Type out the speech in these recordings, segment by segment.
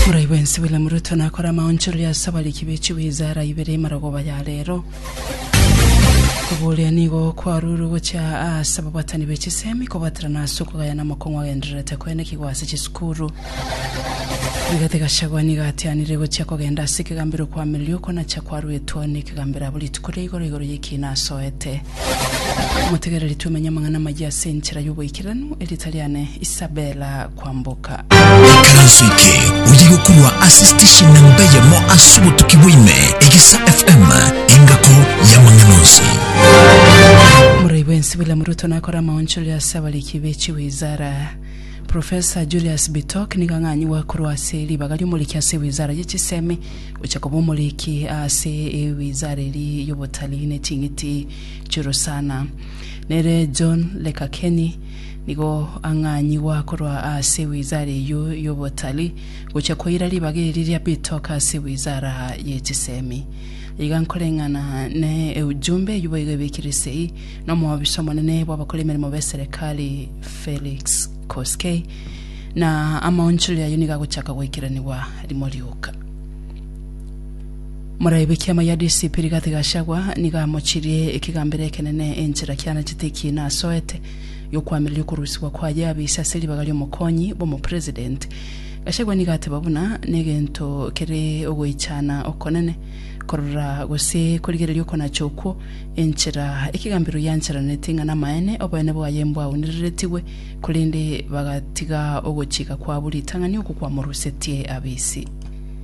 Borai bwensi William Ruto nakore amaonchorori ase abariki be chiwizara ibere marogoba ya rero. Koboria nigo kwarurwe gochia ase ababwatani be chisemi kobwaterana ase okogayana amokong'u agendererete koenekigwa ase chisukuru. Rigathi Gachagua nigo atianire gochia kogenda ase ekegambero kwamirirwe okwo nachia kwaruetwa one ekegambero abwo rituko ria igoro igoro y'ekiina asoete. Motegereri twemenye amang'ana amayia ase enchera y'oboikeranu, erita riane Isabella kwamboka. Ekaranso eke oye gokorwa ase station namba eyemo ase obotuki bwaime, Egesa FM, engako y'amang'ana onsi. Omorai bw'ense William Ruto nakore amaonchori ase abariki be chiwizara. Professor Julius Bitok nigo ang'anyiwa korwa ase ribaga ri'omoriki ase ewizara ye chisemi gocha koba omoriki ase ewizara eria y'obotalii ne ching'iti chirusana. Nere John Lekakeni Nigo ang'anyigwe akorwa ase wizara eyio y'obotalii gochia koira ribaga eri ria bitoka ase wizara ye chisemi. Iga nkoreng'ana ne eujumbe eyio boigo ebekire sei n'omoobisa omonene bw'abakora emeremo b'eserekari Felix Koskei, na amaonchorero ayio nigo agochaka goikeranigwa rimo rioka. Moraigwe ekiama gia DCP Rigathi Gachagua nigo amochirie ekegambero ekenene enchera kianetete ekiina asoete giokwamireria okorusigwa kwaye abise ase ribaga ri'omokonyi bw'omopresident. Gachagua nigo ateba buna negento kere ogoichana okonene korora gose korigereria okonacha okwo enchera ekegambero giancheraneti ng'a namaene oboene bwaye mbwaunireretigwe korende bagatiga ogochika kwabo ritang'ani okwo kwamorusetie abisi.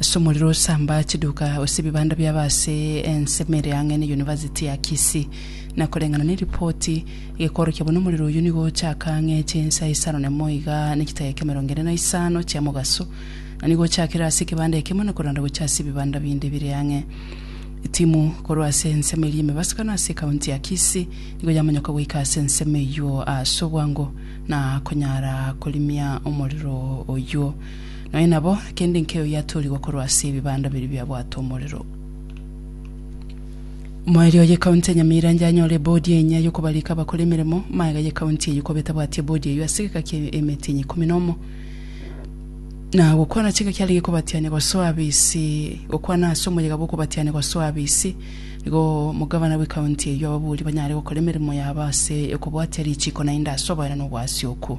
Ase omorero osamba chiduka gose ebibanda biabo ase ensemo ere ang'e ne University ya Kisii. Na koreng'ana neripoti, gekoorokia buna omorero oyio nigo ochaka ang'e chinsa isano na emo iga ne chitageka emerongo ene na isano chia mogaso, na nigo ochakire ase ekebanda ekemo na koranda gochia ase ebibanda binde bire ang'e. Etimu korwa ase ensemo eria emebasakano ase ekaunti ya Kisii nigo yamanyoka goika ase ensemo eyio ase obwango na konyara korimia omorero oyio. Nonya nabo kende nkei oyio atoorigwe korwa ase ebibanda biria biabwate omorero. Moerio ye county ya Nyamira yanyora ebodi enyia yokobarika abakore emeremo, magega ye county eyio koba etabwati ebodi eyio ase egeka kia emetinyi ikomi na omo, na gokwana chingaki aria gekobatiania gosoa abisi gokwana ase omoyega bw'okobatiania gosoa abisi, nigo omogavana bwe county eyio ababuuri banyare gokora emeremo yabo ase okobwatia richiko naende ase oboenani obw'Asiokwo.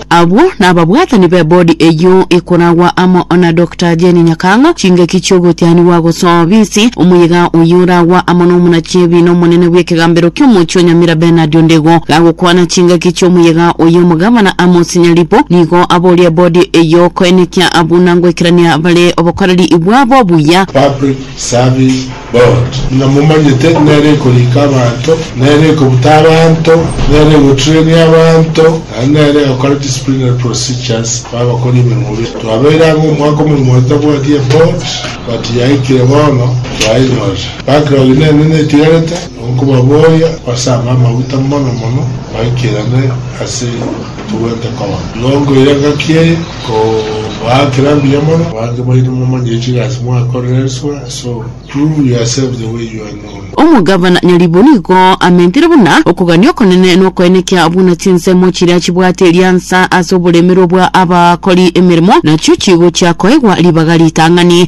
Abwo nababwatani b'ebodi eyio ekoragwa amo na Doctor Jane Nyakang'a, chingaki chi'ogotianigwa gosoa obisi, omoyega oyio oragwa amo n'omonachibi na omonene bw'ekegambero ki'omochie o Nyamira Bernard Ondego. Gagokwana chingaki chi'omoyega oyio omogavana Amos Nyaribo nigo aboria ebodi eyio koenekia buna ngoikerania bare obokoreri bwabo obuya. Public Service Bot. Ng'a momanyete nere ekorika abanto, nere ekobuta abanto, nere egotrain abanto, naende nere egokora disciplinary procedures babakori emeremo bire. Twabeire ang'e omwaka omogima totabwati e bot, but yaikire bono twaenyorire. Backlog eye nene netigarete, nigo nkobaboria gose abe amaguta mono mono baikirane ase togwente koba. Nigo nkoira engaki eye, nkobaakera mbuya mono, abange baino momanyire chigasi mwakorire elsewhere. Omogabana nyaribwo nigo amentire buna okogania okonene nokoenekia buna chinsemo chiria chibwate riansa ase oboremerwa bwa abakori emeremo, nachio chigochia koegwa ribaga ritang'ani.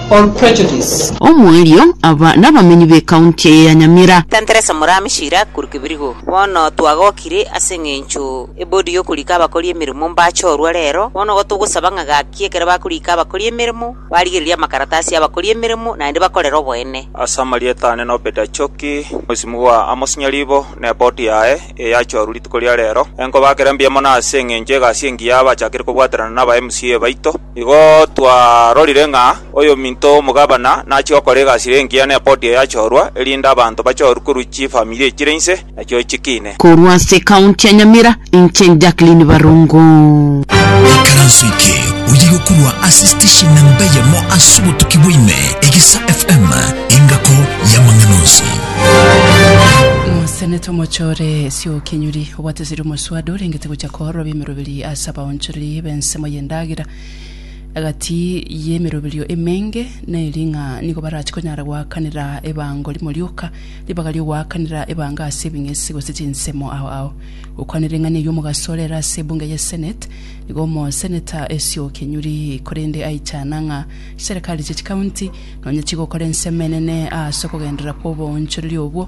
or prejudice. Omoerio, aba nabamenyi b'ekaunti eye ya Nyamira. Tenteresa Omorami Shira Akuru Kibirigo, Bono twagokire ase engencho ebodi yokorika abakori emeremo mbachorwa rero, bono igo togosaba ng'a gaki ekero bakorika abakori emeremo, barigererie amakaratasi y'abakori emeremo naende bakorere oboene. Ase amarieta ane nobeta Choki, Mosimu bwa Amos Nyaribo, na eboti yaye, eye yachorwa rituko ria rero. Enkoba akere mbuya mono ase engencho egasi engiya abachakire kobwaterana naba MCA baito. Igo twarorire ng'a oyominto omogabana nachia gokora egasire engiya n'ebodi eyachorwa, erinde abanto bachorwe korwa chifamiri echire inse, nachio chikiine. Korwa ase ekaunti ya Nyamira, inche Jacqueline Barongo. Ikaranso eke oyigo korwa ase station namba eyemo ase obotuki bwa ime, Egesa FM, engako y'amang'ana onsi. Mosenete omochore ase okinyuri. Obwateseri omoswade orengete gocha koororwa bw'emeroberi ase abaonchoreri b'ensemo y'endagera egati y'emeroberio emenge, na eri ng'a nigo barache konyara goakanera ebango rimo rioka, ribaga ri'ogoakanera ebango ase ebing'esi gose chinsemo ao ao. Gokwana ring'ana eye omogaso ore ere ase ebunge ye Senate, nigo omoseneta Esio Kenyuri korende aichana ng'a chiserekari chie chikaunti nonye chigokora ensemo enene aase okogenderera kw'oboonchoreri obwo,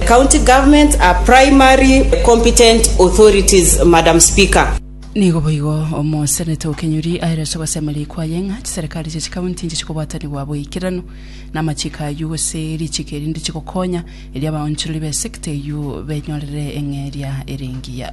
County Governments are primary competent authorities, Madam Speaker. Nigo boigo Omoseneta o Kenyuri aere ase ogosemeria kwaye ng'a chiserikari chia chikaunti inche chikobatanigwa boikeranu namachiko ayio gose richiko erinde chigokonya erio abaonchorori b'esekta eyio benyorere eng'eria ere engiya.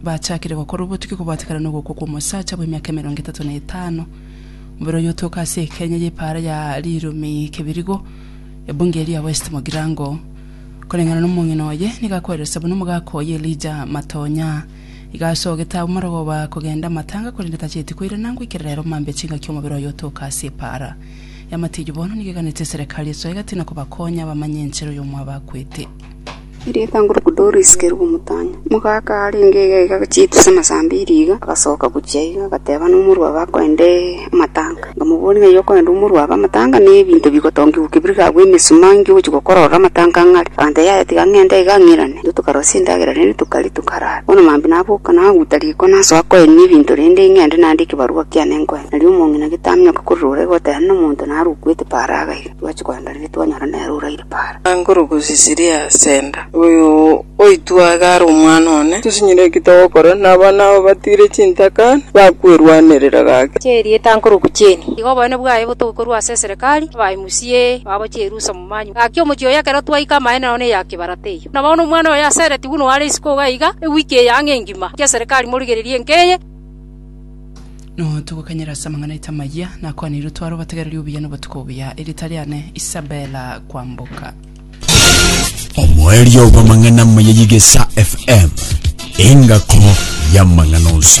Bachakire gokora obotuki kobwatekana nogokwa kw'omosacha bw'emiaka emerongo etato na etano. Omobere oyio otoka ase ekenya y'epaara ya Riromi Kibirigo, ebunge eria West Mogirango. Koreng'ana nomong'ina oye, nigo akweresa buna omogaka oye Elijah Matonya iga asogete abwo marogoba kogenda amatanga korende tacheti koirana ngoikera rero mambia chingaki omobere oyo otoka ase epaara y'amatiyo bono nigo eganete eserekari esoe egati na kobakonya bamanye enchera oyo omwabo akwete. Erietang'uruku Doris ker'u omotang'e. Omogaka arenge egega chitu ase amasambi e riga agasoka gochia iga, agateba nomorwabe akoende amatanga. Nkamobori ng'a yokoenda omorwabe amatanga ne ebinto bigotongigwa kebiri gagwe emesuma inki ogochi gokora ororo amatanga ng'are. Aganteba yaya tiga ng'ende iga ng'irane. Intwe tokarosia endagera rende tokaria tokarara. Bono mambia naboka naguta riko nasoa koenia ebinto rende ng'ende nande ekebarua kiane nkoe. Nario omong'ina getamioka korora ore goteba nomonto narukwete paraga iga. Twachia koendereri twanyora nere oraire para. Angoro gose Siria senda. Oyo oitwe iga are omwana one. Tosinyire ki togokora na abana aba batiire chintaka na bakwerwanerera gake. Chia erieta ankorokwa Jane. Iga oboene bwaye botoke korwa ase eserekari, abae musie, babo chierusa momanyu. Gaki omochie oyo ekero twaika amaene nao neya kibarato eyio. Na bono omwana oyo aseretigwe noware isiko iga iga, ewiki eye ang'e engima, gaki eserekari morigererie enka eye. Notogokanyera ase amang'ana aito amayia nakwaneirwe tware obategereri obuya na obotuko obuya. Erita riane Isabella Kwamboka. Omoerio bw'amang'ana amaya y'Egesa FM, engako y'amang'ana onsi.